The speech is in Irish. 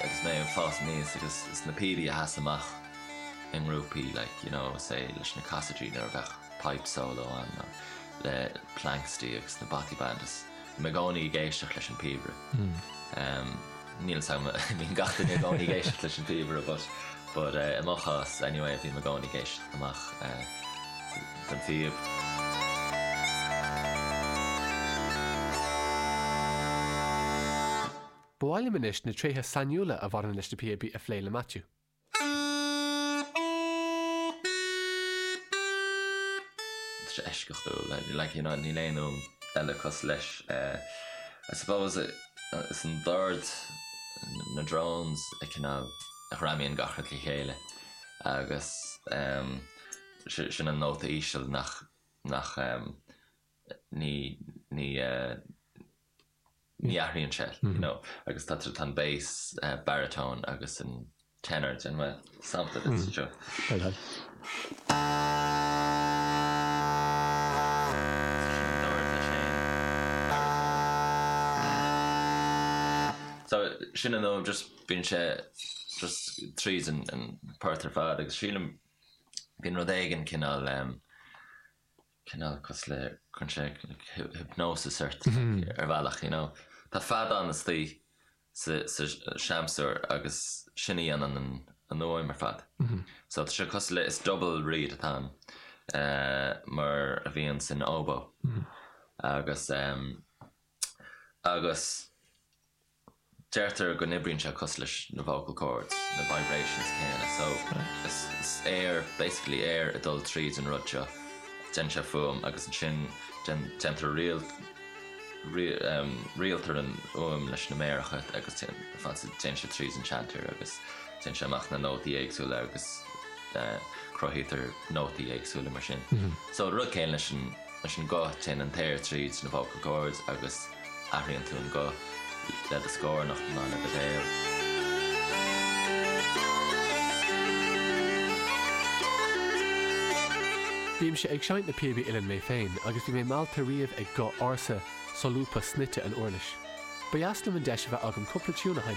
agus mé ag fás aníos agus na píobaí a sheas amach i ngrúpaí like you know say leis na Cassidy nuair a bheadh pipe solo ann nó le Planxty agus na Bothy Band is bhí mé i gcónaí ag éisteacht leis an píobaire umm níl fhios agam I mean gach duine i gcónaí ag éisteacht leis an píobaire but but eh i mo chás anyway bhí mé i gcónaí ag éisteacht amach eh don phíob. Ba mhaith liom anois na tréithe sainiúla a bhaineann leis na píobaí a phlé le Maitiú. tá sé eisceachtúil like you know níl aon fhuaim eile cosúil leis I suppose is an dord na drones a chineál a ghreamaíonn gach rud le chéile agus em sin an nóta íseal nach nach em ní ní eh ní athraíonn sé, you know, agus tá sort of an bass baritone agus an tenor, déanfaidh mé sampla duit anseo. Go deimhin. Sin an dord leis féin. So sin an fhuaim, just bíonn sé just tríd an an port ar fad agus sílim bíonn rud éigin cineál cineál cosúil le cuireann sé hypnosis ort ar bhealach you know tá feag istigh sa seamsúr agus sin a dhéanann an fhuaim ar fad so tá sé cosúil le is double reed atá ann mar a bhíonn san oboe agus agus Deirtear go n-oibríonn sé cosúil leis na vocal cords, na vibrations céanna, so is aer, basically aer ag dul tríd an rud seo, déanann sé fuaim agus ansin déantar, rialtar an fhuaim leis na méaracha agus téann sé tríd an chanter agus déanann sé amach na nótaí éagsúla agus cruthaítear nótaí éagsúla mar sin. So rud céanna leis an. Leis an nguth, téann an t-aer tríd na vocal cords agus athraíonn tú an guth le do scornach nó le do bhéal. Bímse ag seinnt na píobaí uilleann mé féin agus bhí mé meallta riamh ag guth ársa, solúbtha, snoite na huirlise. Ba dheas liom an deis a bheith agam cúpla tiún a sheinnt.